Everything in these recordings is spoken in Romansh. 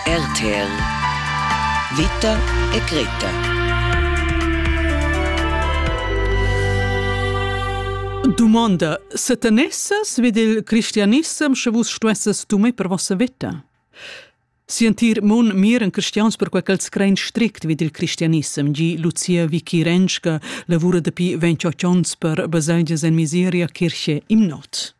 RTL Vita e Greta Dumonda, se tenesses vid il cristianissem, sche vus stuesses dumai per vossa vita? Sientir mun miren cristians per quel ch'els crein strict vid il cristianissem, gi Lucia Vikirenska, lavura dapi 28 onns per baselgias en miseria, kirche, imnot.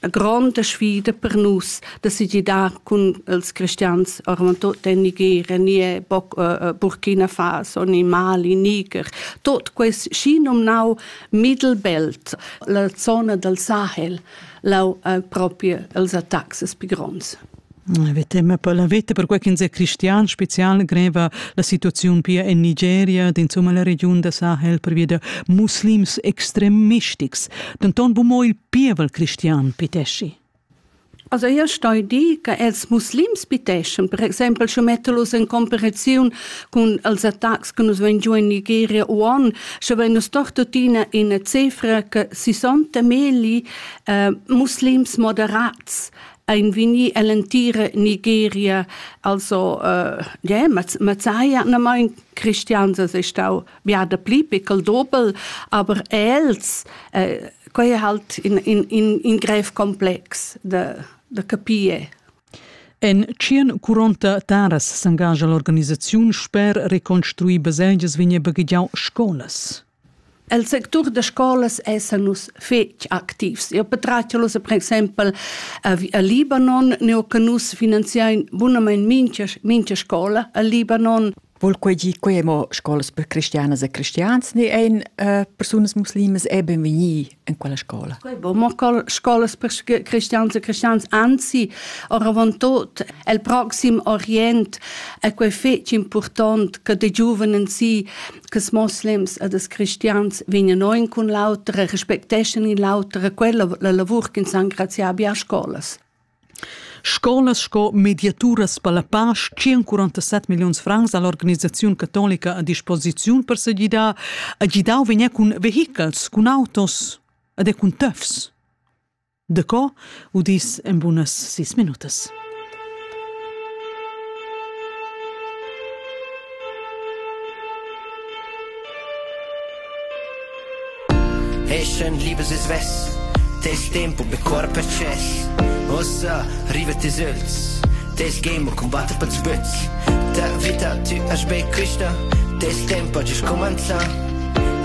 Una grande sfida per nus de se gidar cun els cristians ormai tot en Nigeria, ni eh, Burkina Faso, ni Mali, Niger, tot quest schi nomnau Mittelbelt, la zona del Sahel, lau eh, proprio els attacks più gronds. Avete, ma poi l'avete per quel che è cristian special greva la situazione pia in Nigeria, insomma la regione da Sahel per via de muslims extremistics. Denton bu mo il pievel cristian piteschi? Also io stoi dir che els muslims piteschan, per exempel sche mettelos en comparaziun cun els attacks che nus vein giù in Nigeria u on, sche vein nus doch tuttina ina cifra che 60 meli eh, muslims moderats ein vini ell'entira Nigeria, also eh, yeah, Mazaya, na mein cristians es stau ja dapli pickel dobel, aber els äh, quei è halt in, in, in, in grev complex da, da capire. En tschien curonta taras s'engagia l'organisaziun sper reconstruir baselgias vigne baghigiau scolas. El sectur de scolas es a nus fetg activs. Io petraccialus per exempel a, a Libanon, neo che nus finanziain bunament mincha, mincha scola a Libanon. Vul quei gi quei mo scolas per cristianas e cristians ni ein uh, persunas muslimas e benvegni in quella scola? Quei bo mo scolas per cristians e cristians anzi oravantut el proxim orient è quei fetg important che de giuvenen si che es muslims e des cristians vegnan ein cun l'autra respecteschan in l'autra quella la lavur che san graziar bia scolas. Scolas sco mediaturas per la pasch 147 milliuns francs ha l'organisaziun catolica a disposiziun per segidar ha gidau vegnir cun vehichels, cun autos ed er cun töfs. Daco udis en bunas sis minutas. Eschend libes e svess, tes tempo be corp access. Ossa, riva tes öls, tes game combatte pels böts. Ta vita, tu as be quista, tes tempo ha just commenzà.